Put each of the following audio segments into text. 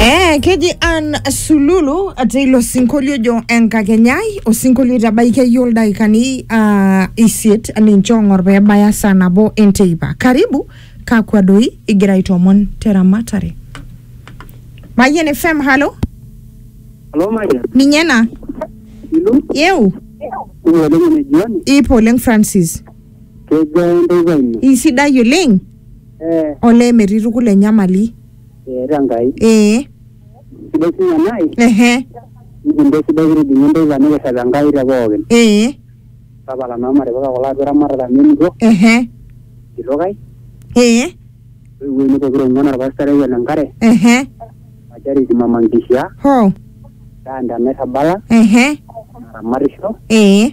Eh, keji Ann Sululu ate ilo sinkolio ojo enkakenyai osinkolio oitabaikia iyie ildaikani uh, isiet ninche ong'or pee ebaya saa nabo enteipa karibu kakwa doi igira aitoomon teramatare Mayian FM halo Halo Maria, ninye ena ilu yeu kumok oleng ene jioni, ipo oleng Francis kejaa enteipa ino? isidai oleng Eh, olee metii tukul enyamali eeta Enkai. ee Sidai sinye nai, ehe nikincho sidai kitijing'a enteipa nikirrep Enkai te pookin. ee Tapala naa matipika kulo atua eramatare amu enito, ehe kitok ai, ee toiwuo ainei pokira ong'uan orpastai lai ole Nkare, ehe o Charity Mama Nkishaa, hoo Dante Nairrabala, ehe naramatisho, ee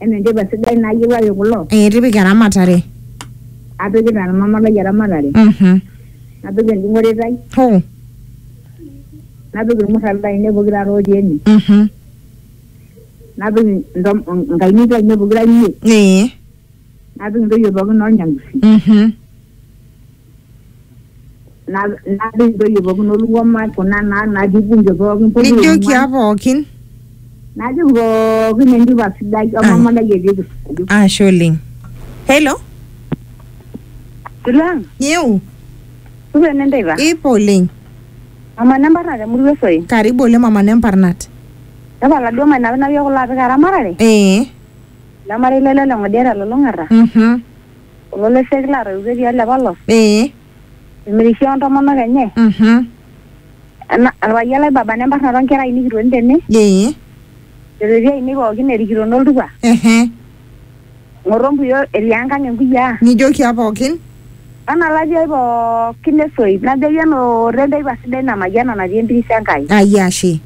Enetipat sidai naayiewaki kulo. Ee tipika eramatare. Apikita ormama lai eramatare. Mhm. Napik enjung'ore ai. Hoo. Napik irmurran laainei pokira aare ootii ene. Mhm. Napik inkayiok aainei pokira imiet. Ee. Napik intoyie pookin oo Nyangusi. Mhm. Na- naata intoyie pookin olung'oma kuna naa natii bunge pookin pokira nijoki ong'uan. aa pookin najoki pookin entupa sidai Ai. omama lai etii kisaju ashe oleng hello Silang, nyeu supa enenteipa. ipo oleng Mama nembarna temurua esoi. karibu oleng mama nemparnat Tapala duo mainapinapie kulo apik eramatare. ee Lemarei lele leng'odia telulung'ata. mhm kulo leshek laatoiutuo etii ele polos ee emirishie ontomonok enye mhm ena orpayian lai baba nembarnata onkera ainei kitoni tene ee irrereti ainei pookin erikito noltupa ehe ng'oto mpuyo etii enkang enkuyiaa nijoki apa pookin nana latii ai pookin esoit najoki enooto enteipa sidai namayiana natii empiris Enkai. Ai ashe.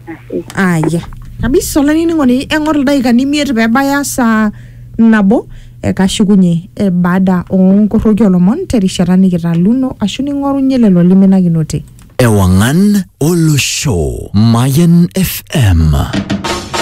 Ashe. aya kabisa olainining'oni eng'or ildaikani imiet pebaya saa nabo ekashukunye eh, baada onkoroki olomon terishata nikitaluno ashu ning'orunye lelo liminakinote Ewangan Olosho. Mayan FM.